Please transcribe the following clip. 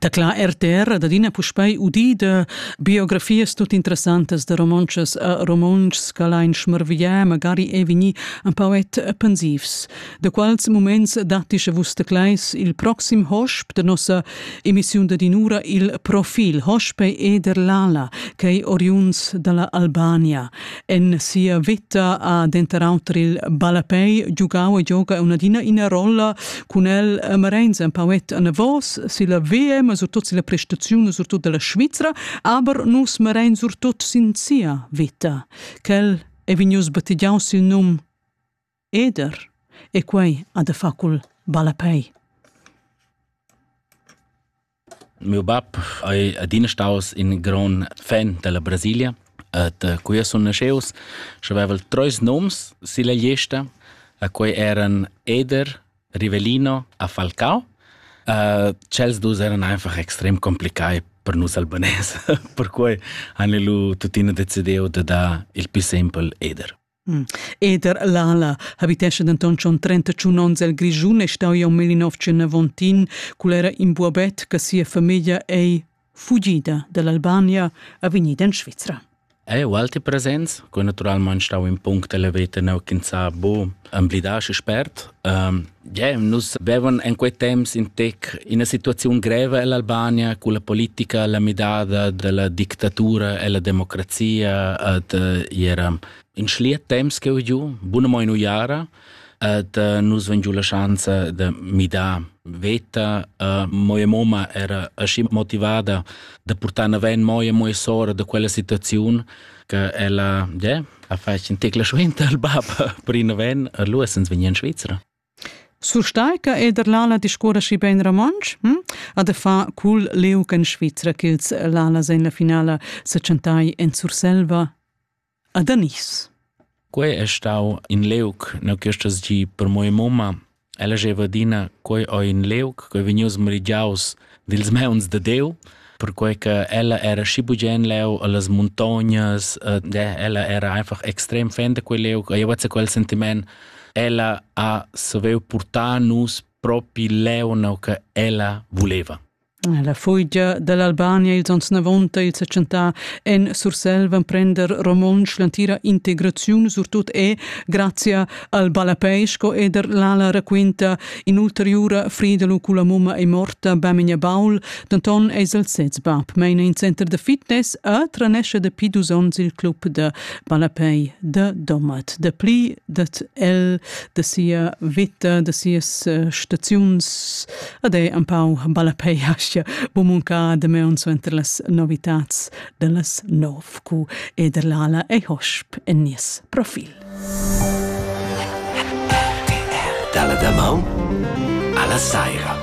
Tacla RTR ad adina puspei udida biografias tut interessantas da romontschas a romontschs che ein schmarviglià magari è vegni un poet pensivs. Da quals moments datti sche vus tecleis il proxim hosp da nossa emissiun da dinura il profil Hospe eder Lala, che ei oriunds dalla Albania. En sia vita ha denter auter il ballapei giugau e gioga un'adina ina rolla cun el Marenz, ein poet anavos silla VM, surtut silla prestaziun, surtut dalla Svizra, aber nus Marenz surtut sin sia vita. Quel è vegnius battigiaus sil num Eder. E quei ha da far cul ballapei. Mio bab ei adina staus in gran fan della Brasilia et uh, qui sun nasceus și aveval treis noms silla gliesta a quei eran Eder, Rivelino a Falcao. Uh, cels dus eran einfach extrem complicai per nus albanese, per quei han lu tuttina decidiu de dar il più sempel Eder. Eder l'ala habitescha denton schon 31 onns el Grischun e stau iom il nov Tschernavontin cul era in buobet che sia famiglia ei fugida dall'Albania a vegnida in Svizra. Ei ualti presents, cu naturalmein stau in punct elevate neu ch'ins sa bu emblidar și spert. Ähm, Yeah, nus bevan en quei temps in tec ina situaziun greva ell'Albania cu la politica la midada della dictatura e la democrazia ad era in schliet temps che ho giu buna mo in uiara ad nus ven giu la schanza de midar veta uh, moja moma era asci motivada da portare avanti moja moja sora da quella situazione che ella ja, ha fatg in tecla suenter al bab per in noven a Luosens vegni in Svizra. Surstai che Ederlala discuora schi bein romontsch, hm? a de fa cul Leuc en Svizra ch'ils Lala en la finala se chantai en Surselva a Danis. Quei è stau in Leuc, no questas gi per moi mamma, Ella gieva adina, quei ho in leuc che ei vegnius merigiaus dils meuns da Diu, perquei che ella era schi bugen leu allas muntognas, ed ella era einfach extrem fan da quei leuc, e io quel sentiment. Ella ha saviu portar nus propi leu, no che ella voleva. La fugia dall'Albania ils onns navonta il setschentà en Surselva emprender romontsch l'entira integraziun surtut e grazia al ballapei sco eder l'ala raquinta in'ulteriura Friedelu culla mumma è morta Bamenia Baul denton eis el sez bab meina in center de fitness a tranesce de pi dus onns il club de ballapei de Domat de pli dat el de sia vita de sias eh, staziuns Ed ei empau balapei aschia bumuncà de meun suenter las novitats dellas nov cu ederlala ei hosp en nies profil. Dalla damaun alla saira.